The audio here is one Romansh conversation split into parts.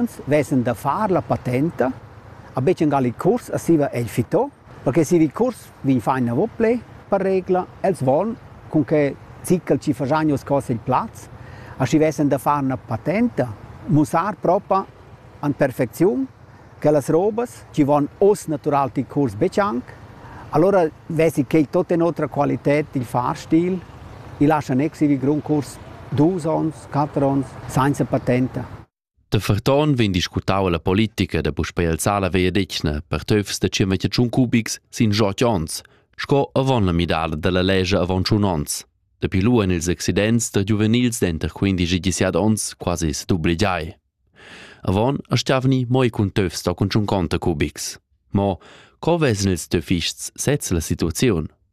Uffants vesan da far la patenta, a betg angal il curs a siva egl fitò, perché si il curs vegn fa inavo ple, per regla, els von cun che ziccal ci faschagnos cos il plaz, a schi vesan da far una patenta, mussar propa an perfecziun che las robas ci von oz natural til curs betg anc, allora vesi quei tot en otra qualität il fahrstil, i lascha nec si il grund curs dus ons, quatter ons, sainza patenta. Da ferton vegn discutau la politica da puspei alzar la vegliadetgna per töfs da tschemetje tschun cubics sin jot ons, sco avon la midada dalla legge avon tschun ons. Dapi lu en ils accidents da giuvenils denter 15 e 17 ons quasi s'dubligiai. Avon astgavni moi cun töfs da cun tschun conta cubics. Mo co vessen ils töfists sez la situaziun?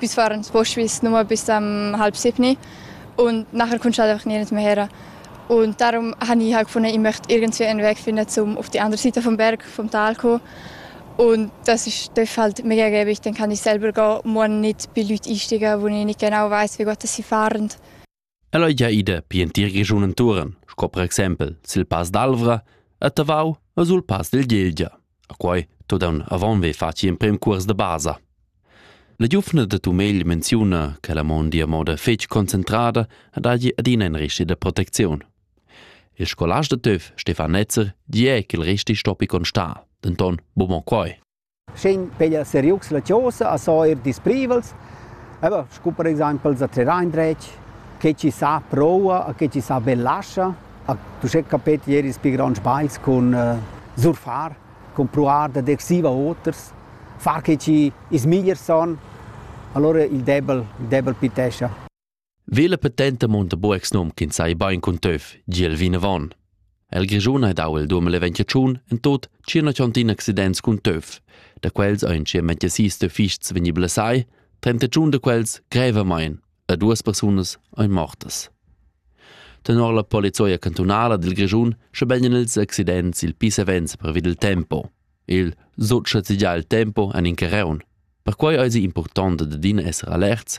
Püs far ün sbosch vis nua bis am halb siebni und nachher cuntschalte einfach nirgends mehr her. Und darum habe ich halt gefunden, ich möchte irgendwie einen Weg finden, um auf die andere Seite vom Berg, vom Tal zu kommen. Und das ist dürfte halt mega gäbig, dann kann ich selber gehen und muss nicht bei Leuten einsteigen, wo ich nicht genau weiß, wie gut sie fahren. Ella ei gia ida pi en tier Grischun entuorn, sco per exempel sil Pass d'Alvra, a Tavau e sul Pass del Gelgia. A quei todan avon ve faci emprem cuors de basa. La giuvna de Tumegl menziuna che la mondi a moda fetg concentrada ed hagi adina in resti de protezion. Il scolast de Töf, Stefan Netzer, di è che il resti stoppi constar, denton bumo quei. Sch'in peglia seriucs la chosa a so eir disprivels, aber scu per exaimpel za trer indretg, che chi sa proua a che chi sa be lascha, a tuschè capet ier ils pi gronds bagls cun surfar, cun pruar dad exaiver oters, far che chi ils migliers son, alura il debel il debel pitescha. Vela petenta munta bu ex num ch'ins sai bain cun töf, giel vinavon. El Grischun ha dau il 2021 en tot cirna tschontin accidents cun töf. Da quels ein cirmente sis töfists vegni blessai, 31 da quels grevamain e duas persunas ein mortas. Tenor la polizia cantunala dil Grischun schabeglien ils accidents il pisavens previd il tempo. Il sut schazigia il tempo en in carreun. Perquai eisi impurtont da adina esser alerts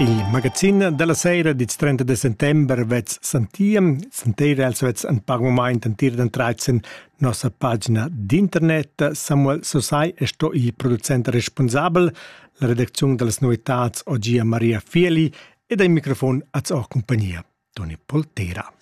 Il magazin della sera dits 30 de settember vets santiem, santire els vets en par moment entir den 13 nossa pagina d'internet. Samuel Sosai è sto il producent responsabel, la redaczione delle novitats Ogia Maria Fieli e dai microfon az o compagnia Toni Poltera.